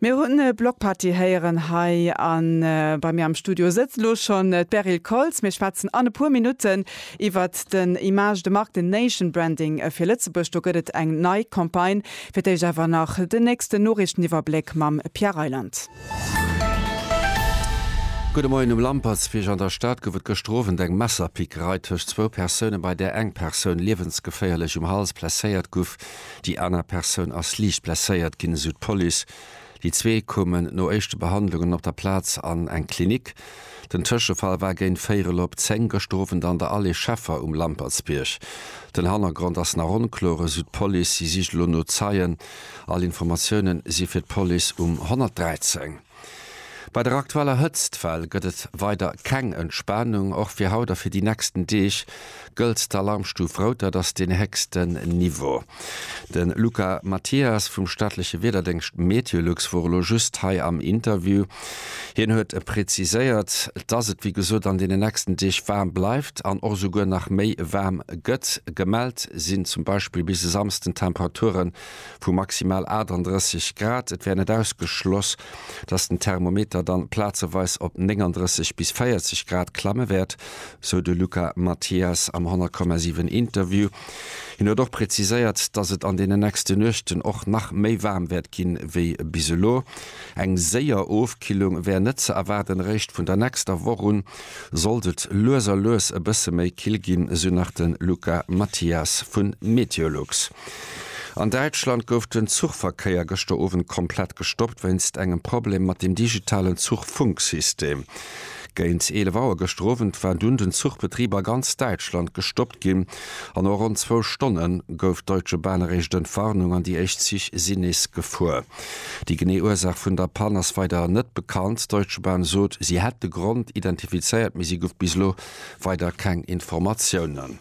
Mir hunn Block Party héieren hei a bei mir am Studio sëtzt elo schonn d'Beryl Koltz. Mir schwätzen an e puer Minutten iwwert den Image de marque, den Nation Branding fir Lëtzebuerg. Do gëtt et eng nei Campagne. Fir d'éischt awer nach den nächsten Noriichteniwwerbléck mam Pierre Reyland. Gudde Moien. Um Lampertswierk an der Stad gouf et gëschter Owend eng Messerpickerei tëscht zwou Persounen, bei där eng Persoun liewensgeféierlech um Hals blesséiert gouf. Déi aner Persoun ass liicht blesséiert ginn, esou d'Police. Déi zwee koumen no éischte Behandlungen op der Plaz an eng Klinik. Den Tëschefall war géint véierel op 10 gëschter Owend an der Allée Scheffer um Lampertsbierg. Den Hannergrond ass nach onkloer, esou d'Police. Si sicht elo no Zeien. All Informatioune si fir d'Police um 113. Bei der aktueller Hëtztwell gëtt et weider keng Entspanung. Och fir haut a fir déi nächsten Deeg gëllt d'Alarmstuf rout, dat ass den héchsten Niveau. De Luca Mathias vum staatleche Wiederdéngscht Meteolux wor elo just hei am Interview. Hien huet preziséiert, dass et wéi gesot an deenen nächsten Deeg waarm bleift an och esouguer nach méi waarm gëtt. Gemellt sinn zum Beispill bis e Samsden Temperaturen vu maximal 38 Grad. Et wär net ausgeschloss, dass den Thermometer dann plazeweis op 39 bis 40 Grad klamme wäert, sou de Luca Mathias am 100,7 Interview. Hien huet och präziséiert, dass et an deenen nächste Nuechten och nach méi waarm wäert gi wéi bis elo. Eng séier Ofkillung wär net ze erwaarden, eréischt vun der nächster Woch un sollt et lues a lues e bësse méi kill ginn, sou nach de Luca Mathias vu Meteolux. An Däitschland gouf den Zuchverkéier gëschter Owend komplett gestoppt wéinst engem Problem mat dem digitalen Zuchfunksystem. Géint 11 Auer gëschter Owend war dunn den Zuchbetrib a ganz Däitschland gestoppt ginn. A no ronn zwou Stonne gouf d'Deutsche Bahn eréischt Entwarnung an déi éischt Zich sinn nees gefuer. Déi genee Ursaach vun der Pann ass weider net bekannt. D'Deutsche Bahn sot, si hätt de Grond identifizéiert, mee si gouf bis elo weider keng Informatiounen.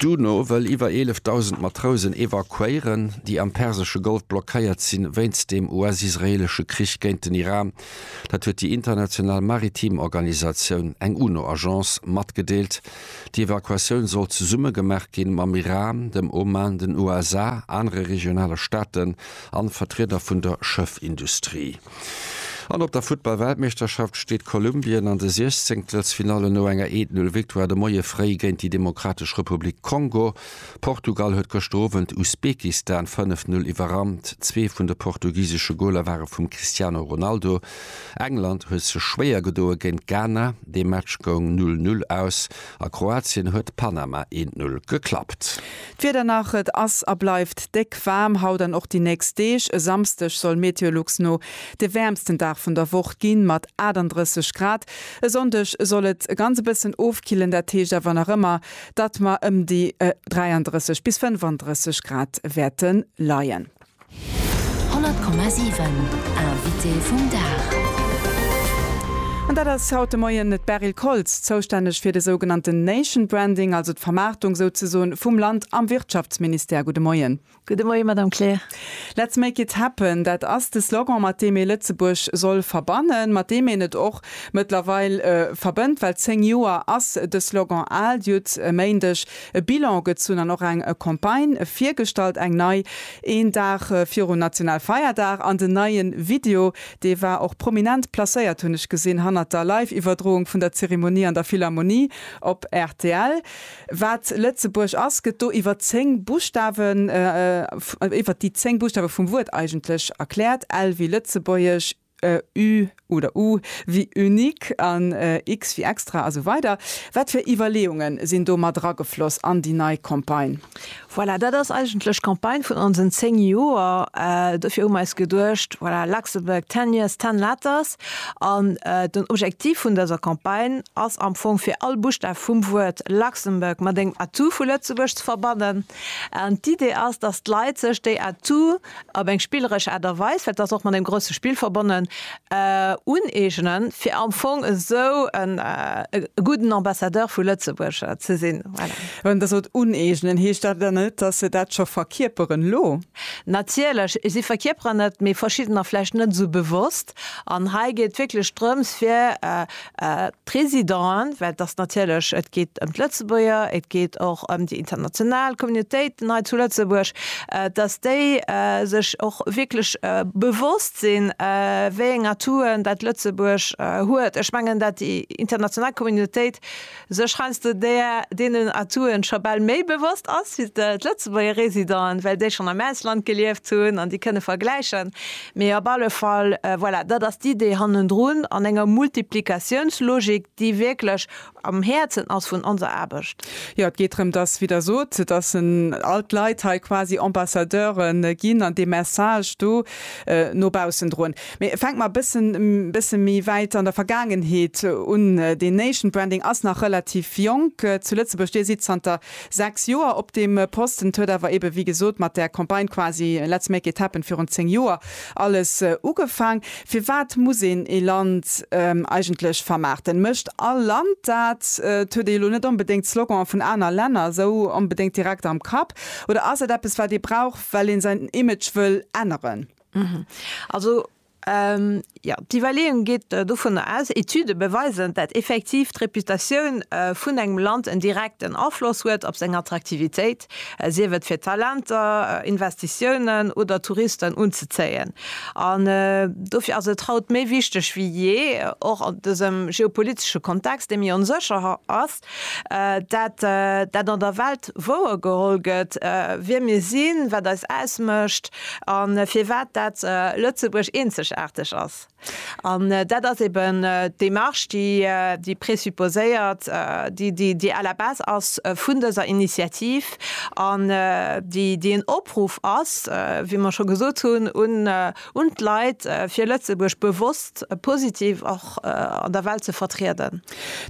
D'UNO wëll iwwer 11.000 Matrousen evakuéieren, déi am persesche Golf blockéiert sinn, wéinst dem US-israeelesche Krich géint den Iran. Dat huet déi international maritim Organisatioun, eng UNO-Agence, matgedeelt. Déi Evakuatioun soll zesumme gemaach gi mam Iran, dem Oman, den USA, anere regionale Staaten an Vertrieder vun der Schëffindustrie. An op der Futtball-Weltmeeschterschaft steet Kolumbien an de Siechzéngtelsfinallen no enger Eet-Null-Victoire de Moie fréi géint déi Demokratesch Republik Kongo. Portugal huet gëschter Owend Usbekistan 5-Null iwwerrannt. Zwee vun de portugisesche Goler ware vum Cristiano Ronaldo. England huet sech schwéier gedoe géint Ghana. Dee Match goung Null-Null aus. A Kroatien huet Panama eent Null geklappt. D'Wieder nach, Et ass a bleift déck waarm haut an och déi nächst Deeg. E Samsdeg soll Meteolux no de wäermsten Dag vun der Woch ginn, mat 38 Grad. E Sonndeg soll et e ganz e bëssen ofkillen, dat heescht awer nach ëmmer, datt mer ëm déi 33 bis 35 Grad wäerte leien. 100,7 Invité vum Dag. An dat ass haut de Moien d'Beryl Koltz, zoustänneg fir de sougenannten Nation Branding, also d'Vermaartung souzesoen vum Land am Wirtschaftsministère. Gudde Moien. Gudde Moien, Madame Kleer. Let's make it happen, dat ass de Slogan, mat deem ee Lëtzebuerg soll verbannen, mat deem een et och mëttlerweil verbënnt, well zéng Joer ass de Slogan al. Dir hutt e Méindeg E Bilan gezunn an och eng Campagne virgestallt, eng nei, een Dag virun Nationalfeierdag, an den neie Video, dee war och prominent placéiert, hunn ech gesinn, hannert der Live-Iwwerdroung vun der Zeremonie an der Philharmonie op rtl. Wat Lëtzebuerg ass, gëtt do iwwer 10 Buschtawen, iwwert déi 10 Buschtawe vum Wuert eigentlech erkläert, L wéi Lëtzebuergesch, ü oder u wéi unique an x wéi extra a sou weider Wat fir Iwwerleeunge sinn do mat eragefloss an déi nei Campagne? Voilà, dat ass eigentlech d'Campagne vun onsen 10 Joer. Dofir hu mer eis geduecht, voilà, Luxembourg ten years, ten letters. An den Objektiv vun dëser Campagne ass am Fong, fir all Buschtaf vum Wuert Luxembourg mat engem Atout vu Lëtzebuerg ze verbannen. An d'Idee ass, dass d'Leit sech déi Atouts op eng spilleresch Aart a Weis, well et ass och mat engem grousse Spill verbonnen, uneegnen, fir am Fong esou e gudden Ambassadeur vu Lëtzebuerg ze sinn. Voilà. Wann Der sot uneegnen, heescht dat dann net, dass se dat scho verkierperen elo? Natierlech, si verkierperen et, mee verschiddener vläicht net esou bewosst. An hei geet et wierklech drëms, fir D'Résidenten, well et ass natierlech, et geet ëm d'Lëtzebuerger, et geet och ëm déi international Communautéiten hei zu Lëtzebuerg, dass déi sech och wierklech bewosst sinn, wéi eng Atoutë dat Lëtzebuerg huet. Ech mengen, dat déi international Communautéit Sech schreiss de där deenen Atouen scho bal méi bewosst ass wéi d'Lëtzebuerger Residenten, well déi schonn am Ausland gelieft hunn an déi kënne vergläichen. Mee op alle Fall, voilà, dat ass d'Idee hannendrun an enger Multiplikatiounslogik, déi wierklech am Häerzen ass vun onser Aarbecht. Jo, et geet drëm, dass, wéi Der sot, dass all d'Leit hei quasi Ambassadeure ginn an dee Message do no baussendrun. Mee fänkt mer bëssen bëssen méi wäit an der Vergaangenheet un. Deen Nation Branding ass nach relativ jonk zu Lëtzebuerg. Dir sidd zanter 6 Joer op deem Posten. Et huet awer ebe wéi gesot mat der Campagne quasi Let's make it happen virun 10 Joer alles ugefaang. Firwat muss een ee Land eigentlech vermaarten? Mécht all Land dat? Et huet ee jo lo net onbedéngt d'Sloganen vun aner Länner esou onbedéngt direkt am Kapp. Oder ass et eppes wat ee brauch well een säin Image wëll änneren? Mhm. Also, jo, d'Iwwerleeung geet dovunner aus, Etüde beweisen, dat effektiv d'Reputatioun vun engem Land en direkten Afloss huet op seng Attraktivitéit, sief et fir Talenter, Investitiounen oder Touristen unzezéien. An dofir ass et haut méi wichteg wéi jee, och an dësem geopolitesche Kontext, dee méi onsécher ass, Dat, dat an der Welt wouergeholl gëtt, wie mir sinn, wat eis ausmécht a firwat dat Lëtzebuerg eenzegaarteg ass. An dat ass eben d'Démarche, déi, déi présupposéiert, déi, déi, déi à la base ass vun dëser Initiativ an déi, déi en Opruff ass, wéi mer scho gesot hunn, un, Un d'Leit, fir Lëtzebuerg bewosst, positiv och an der Welt ze vertrieden.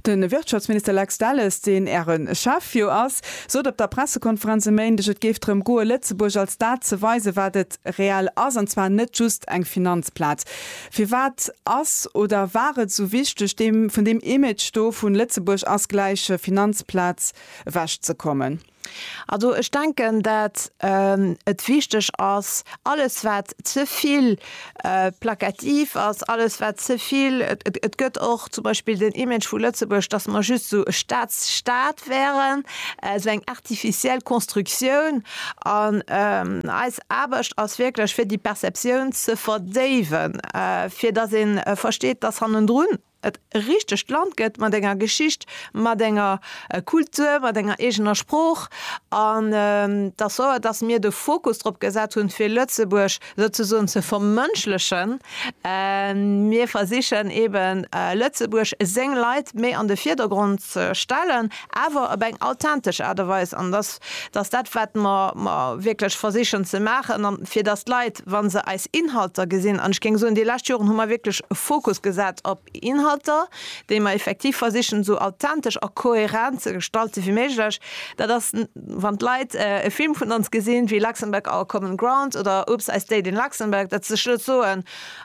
De Wirtschaftsminister Lex Delles, deen Äre Chef jo ass, sot op der Pressekonferenz e Méindeg, et géif drëm goe Lëtzebuerg als dat ze weisen, wat et reell ass, an zwar net just eng Finanzplaz. Firwat ass oder war et esou wichteg, vun deem Image do vu Lëtzebuerg ass gläich Finanzplaz ewechzekommen? Also ech denken, dat et wichteg ass, alles wat ze vill plakativ ass, alles wat ze vill, et gëtt och zum Beispill den Image vu Lëtzebuerg, datt mer just esou e Staatsstaat wären, esou eng artificiel Constructioun. An eis Aarbecht ass wierklech fir déi Perceptioun ze verdéiwen, fir datt ee versteet, datt hannendrun et e richtegt Land gëtt mat enger Geschicht, mat enger Kultur, mat enger eegener Sprooch an dass sou dass mir de Fokus drop gesat hunn, fir Lëtzebuerg souzesoen ze vermënschlechen. Mir versichen eeben, Lëtzebuerg, seng Leit méi an de Virdergrond ze stellen. awer op eng authentesch Aart a Weis, an dass dass dat, wat mer mer wierklech versichen ze maachen, an fir dass d'Leit, wa se eis Inhalter gesinn, an ech géing soen, déi lescht Joren hu mer wierklech e Fokus gesat op Inhalter, déi mer effektiv versichen esou authentesch a kohärent ze gestalten wéi méiglech, dat ass, wann d'Leit e Film vun ons gesinn, wéi Luxembourg, Our Common Ground oder Oops! I Stayed in Luxembourg, dat se sech net soen,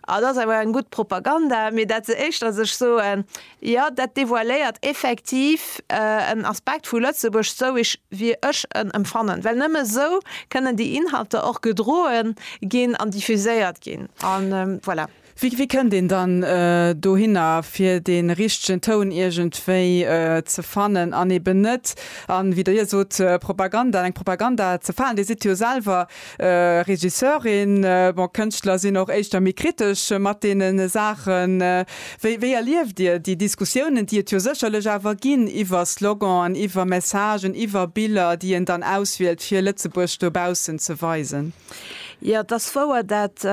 Ah, dat ass awer eng gutt Propaganda, mee dat se éischter sech soen, Jo, dat devoiléiert effektiv en Aspekt vu Lëtzebuerg, sou wéi ech en empfannen, well nëmme esou kënnen déi Inhalter och gedroe ginn an diffuséiert ginn. A voilà. Wéi kënnt een dann dohinner, fir dee richtegen Toun iergendwéi ze fannen an eben net, wéi Der jo sot, Propaganda, an eng Propaganda ze falen? Dir sidd jo selwer Regisseurin, bon, Kënschtler sinn och éischter méi kritesch mat deene Saachen. Wéi, wéi erlieft Dir déi Diskussiounen, déi et jo sécherlech awer ginn iwwer Sloganen, iwwer Messagen, iwwer Biller, déi een dann auswielt, fir Lëtzebuerg dobaussen ze weisen? Jo, et ass wouer, dat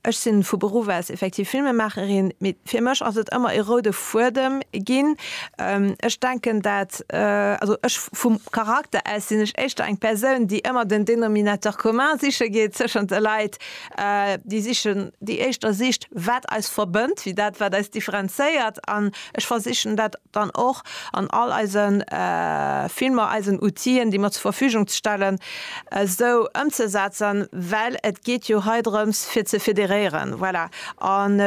Ech sin vu Beruff aus effektiv Filmemaacherin, mee fir mech ass et ëmmer e roude Fuedem gin. Ech denken dat, also ech vum Charakter aus sin ech éischter eng Persoun déi ëmmer den Dénominateur commun siche geet zeschent de Leit, déi sichen, déi éischter sicht wat eis verbënnt wéi dat wat eis differenzéiert an ech versichen dat dann och an all eise Filmer eisen Outien, déi mer zur Verfügung stellen, esou ëmzesetzen, well et geet jo hei drëms, fir ze federéieren. Voilà. An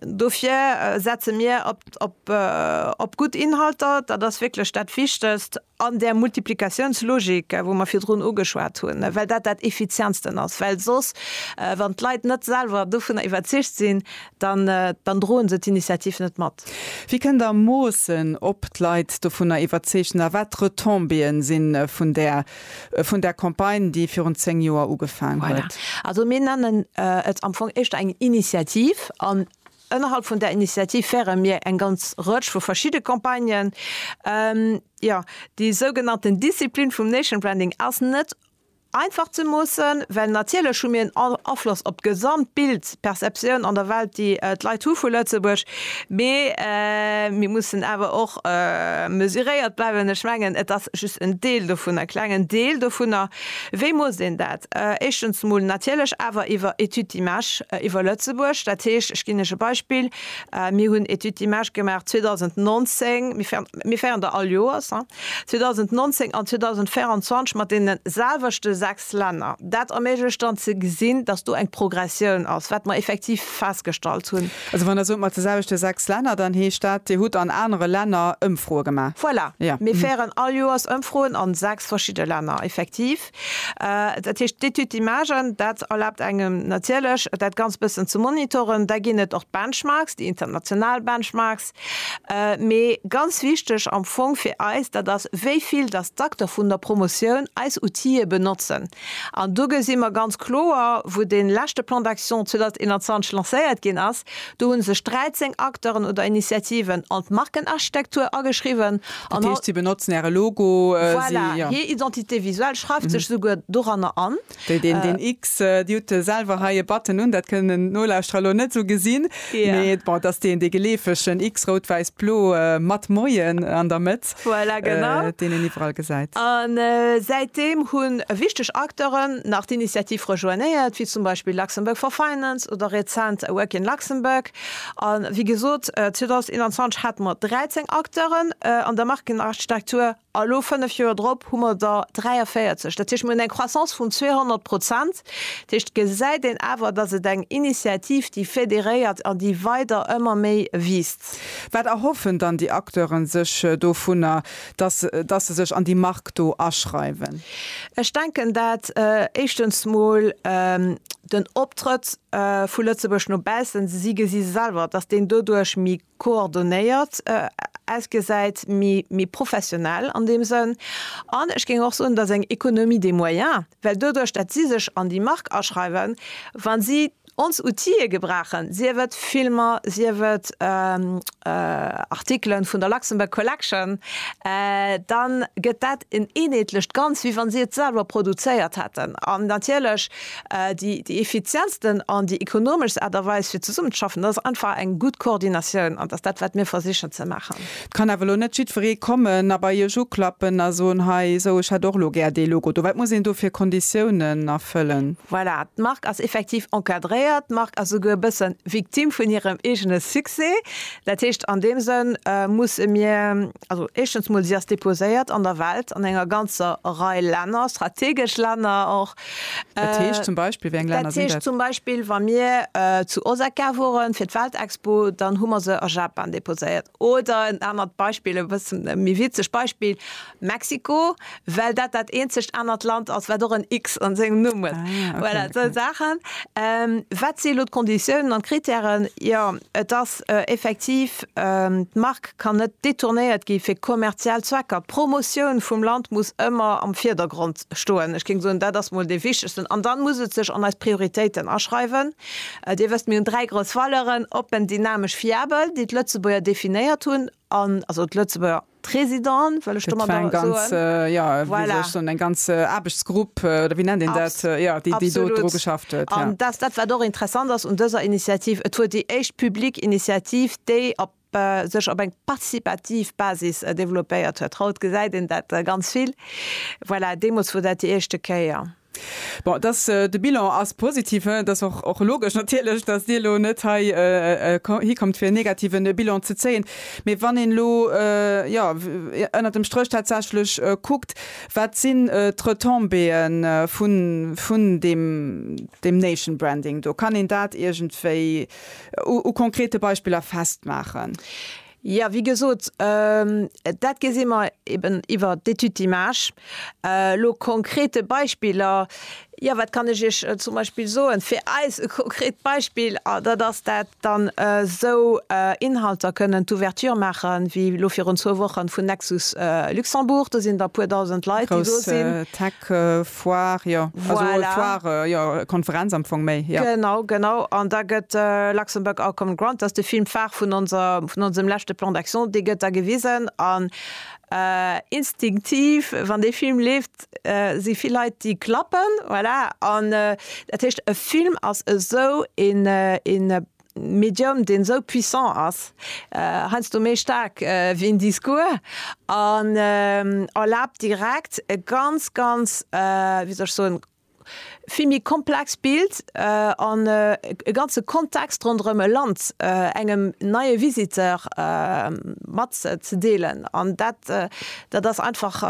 dofir setze mir op gutt Inhalter, dat ass wierklech dat Wichtegst. an där Multiplikatiounslogik, wou mer virdrun ugeschwat hunn, well dat dat Effizientsten ass, well soss, wann d'Leit net selwer dovunner iwwerzeegt sinn, dann droen se d'Initiativ net mat. Wéi kënnt Der moossen, ob d'Leit dovunner iwwerzeegt sinn a wat d'Retombéeë si vun där Campagne, déi virun zéng Joer ugefaang huet? Voilà. Also mir nennen et am Fong éischter eng Initiativ an Ënnerhalb vun der Initiativ féiere mir eng ganz Rëtsch vu verschidde Campagnen. Jo, déi sougenannten Disziplin vum Nation Branding ass net einfach ze moossen, well natierlech hu mir en Afloss op d'gesamt Bild, d'Perceptioun an der Welt, déi d'Leit hu vu Lëtzebuerg. Mee mir mussen awer och mesuréiert bleiwen. Ech mengen, et ass just en Deel dovunner, e klengen Deel dovunner. Wéi muss een dat? Éischtens emol natierlech awer iwwer Études d'images iwwer Lëtzebuerg. Dat heescht, ech ginn lech e Beispill, Mir hunn Études d'images gemaach 2019, mir féieren der all Joers, 2019 an 2024 mat deene selwechte sechs Länner. Dat erméiglecht dann ze gesinn, dass do eng Progressioun ass, wat mer effektiv, festgestallt hunn. Also wann Der sot, mat de selwechte sechs Länner, dann heescht dat, Dir hutt an anere Länner Ëmfroe gemaach? Voilà, mir féieren all Joers Ëmfroen a sechs verschidde Länner, effektiv. Dat heescht, d'Étude d'image, dat erlaabt engem natierlech, dat Ganzt e bëssen ze monitoren. Da ginn et och d'Benchmarks, déi international Benchmarks. Mee ganz wichteg am Fong fir eis, dat ass, wéi vill dass d'Acteur vun der Promotioun eis Outile benotzen. An do gesi mer ganz kloer, wou dee leschte Plan d'action 2021 lancéiert ginn ass, do hu sech 13 Acteuren oder Initiativen an d'Markenarchitektur ageschriwwen. Dat heescht, si benotzen Äre Logo, si, jo. Voilà, hir Identité visuelle schreift sech souguer doranner an. Wéi deen, deen X, Dir hutt selwer hei e Button un, dat kënnen d'Nolauschterer elo net esou gesinn, mee bon, et ass deen, dee geleefegen X, rout-wäiss-blo, mat Moien an der Mëtt. voilà, genau. äh, deen een iwwerall gesäit. An äh, säitdeem hunn wichteg Acteuren nach d'Initiativ rejoignéiert, wéi zum Beispill Luxembourg for Finance oder rezent Awaken Luxembourg. An wéi gesot, äh, 2021 hate mer 13 Acteuren äh, an der Markenarchitektur a lo 5 Joer drop hu mer der 43. Dat heescht, mir hunn eng Croissance vun 200 Prozent Dat heescht, gesäit een awer, datt et eng Initiativ, déi fédéréiert an déi weider ëmmer méi wiisst. Wat erhoffen dann déi Acteure sech dovunner, datt datt se sech an déi Mark do aschreiwen? Ech denken, dat éischtens mol den Optrëtt vu Lëtzebuerg no baussen, si gesi selwer, datt deen doduerch méi. coordonéiert ausgesäit, méi, méi professionell an deem Sënn. An ech géing och soen, dass eng Économie des moyens, well doduerch, datt si sech an déi Mark aschreiwen, wa si ons Outillë gebrauchen, sief et Filmer, sief et Artikelen vun der Luxembourg Collection, da gëtt dat en eenheetlecht Ganz, wéi wa si et selwer produzéiert hätten. An natierlech Déi effizientsten an déi ekonomeschst Aart a Weis fir zesummenzeschaffen, dat ass einfach eng gutt Koordinatioun. An dat ass dat, wat mir versichen ze maachen. Et kann awer elo net jiddweree kommen a bei Iech uklappen a soen, Hei, esou, ech hätt och elo gär dee Logo do. Wat muss een do fir Konditiounen erfëllen? Voilà, d'Mark ass effektiv encadréiert. D'Mark ass esouguer e bësse Victime vun hirem eegene Succès. Dat heescht, an deem Sënn musse mir Also éischtens mol, si ass deposéiert an der Welt an enger ganzer Rei Länner, strategesch Länner och. Dat heescht zum Beispill, wéi eng Länner sinn dat? Dat heescht zum Beispill, wa mir zu Osaka woren fir d'Weltexpo, dann hu mer se a Japan deposéiert. Oder en anert Beispill, e bëssen méi witzeg Beispill, Mexiko, well dat dat eenzegt anert Land ass, wat och en X an sengem Numm huet. Voilà, esou Saachen. Wat si elo d'Konditiounen an d'Krittären? Jo, et ass effektiv, d'Mark kann net detournéiert gi fir kommerziell Zwecker. D'Promotioun vum Land muss ëmmer am Virdergrond stoen. Ech géing soen, dat ass mol dee Wichtegsten. An dann muss et sech an eis Prioritéiten aschreiwen. Dir wësst, mir hunn dräi grouss Valeuren, oppen, dynamesch, fiabel, déi d'Lëtzebuerger definéiert hunn an, also d'Lëtzebuerger, Président, well ech do mat eng ganz, jo, wéi soll ech soen, eng ganz Aarbechtsgrupp, oder wéi nennt een dat, jo, déi do dru geschafft huet. Absolut. An dat, dat wat och interessant ass un dëser Initiativ, et wor déi éischt public Initiativ, déi op, sech op eng participativ Basis développéiert huet. Haut gesäit een dat ganz vill. Voilà, deemools wor dat déi éischte Kéier. Bon, dass de Bilan ass positiv, et ass och, och logesch natierlech, dass Dir elo net hei hikommt, fir en negative Bilan ze zéien. Mee wann een elo, jo, ënnert dem Stréch tatsächlech kuckt, wat sinn d'Retombéeë vun, vun deem, deem nation branding do? Kann een dat iergendwéi u konkrete Beispiller festmaachen? Jo, wéi gesot, dat gesi mer eben iwwer d'Étude d'images. Elo konkrete Beispiller, jo, wat kann ech Iech zum Beispill soen? Fir eis e konkret Beispill, dat ass dat dann esou Inhalter kënnen d'Ouverture maache wéi elo virun zwou Woche vun Nexus Luxembourg. Do sinn der e puer Dausend Leit, déi do sinn. Park, Foire, jo. Voilà. Also Foire, jo, Konferenz am Fong méi, jo. Genau, genau. An da gëtt Luxembourg Art Common Ground, dat ass de Film phare vun onser, vun onsem leschte Plan d'action, dee gëtt da gewisen. An instinktiv, wann dee Film leeft, si vill Leit, déi klappen, voilà. An dat heescht, e Film ass esou een, een, Medium, deen esou puissant ass, heiansdo méi staark wéi en Discours, an erlaabt direkt e ganz, ganz, wéi soll ech soen, vill méi komplex Bild an e ganze Kontext ronderëm e Land engem neie Visiteur mat ze deelen. An dat. Dat ass einfach,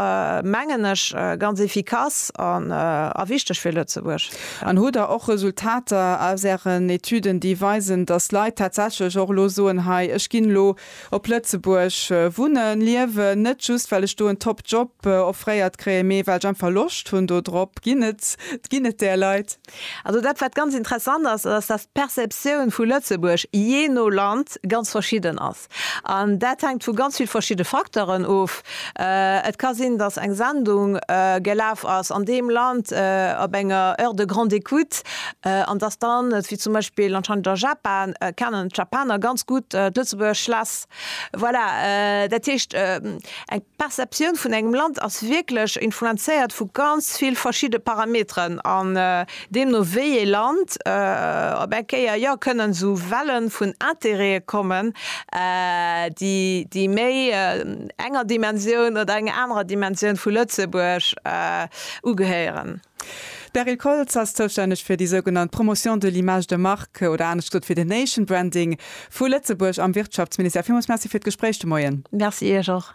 mengen ech, ganz efficace a wichteg fir Lëtzebuerg. An hutt Der och Resultater aus Ären Etüden, déi weisen, datt Leit tatsächlech och elo soen, Hei, ech ginn elo op Lëtzebuerg wunnen, liewen, net just well ech do en top Job offréiert kréien, mee well ech einfach Loscht hunn dodrop? Ginn et ginn et där Leit? Also dat, wat ganz interessant ass, ass, datt d'Perceptioun vu Lëtzebuerg jee no Land ganz verschidden ass. Text. An dat hänkt vu ganz vill verschidde Facteuren of. Et ka sinn, datt eng Sendung gelaf ass an deem Land op enger Heure de grande écoute an datt dann, wéi zum Beispill anscheinend a Japan, kennen d'Japaner ganz gutt d'Lëtzebuerger Schlass. Voilà, dat heescht eng. D'Perceptioun vun engem Land ass wierklech influenzéiert vu ganz vill verschidde Parameteren an deemno wéi ee Land op eng Kéier, jo, kënnen esou Welle vun Intérête kommen, déi méi enger Dimensioun oder enger anerer Dimensioun vu Lëtzebuerg ugehéieren. D'Beryl Koltz ass zoustänneg fir déi sougenannt Promotion de l'image de marque, oder anescht gesot fir de Nation Branding vu Lëtzebuerg am Wirtschaftsministère. Villmools Merci fir d'Gespréich de Moien. Merci Iech och.